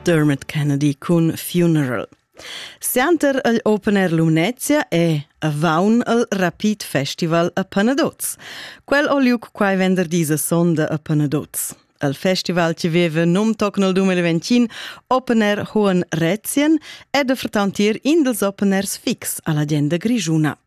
Dermot Kennedy cun Funeral. Sianter el Open Air Lumnezia è avaun al Rapid Festival a Panadoz. Quel o liuc quai venderdi se sonda a Panadoz. Al festival ci veve num toc nel 2021 Open Air Hohen Rätschen ed a fretantir in dels Open Airs fix alla genda grigiuna.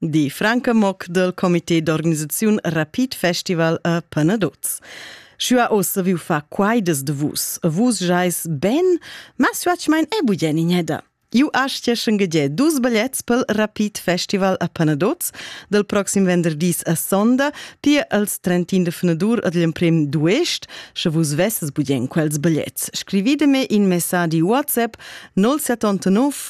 Die Franke Mock dal comité d'organisaziun Rapid Festival a Panaduz. Schua oz viu fa quaidas de vus. Vus jais ben, ma suatg mein e bugen ineda. Ju astieschen gede dus biglets pel Rapid Festival a Panaduz del proxim venderdis a sonda, pia als 31 de fenadur ad l'emprim duest, sche vus vesses bugen quels biglets. Scrivide me in messadi WhatsApp 079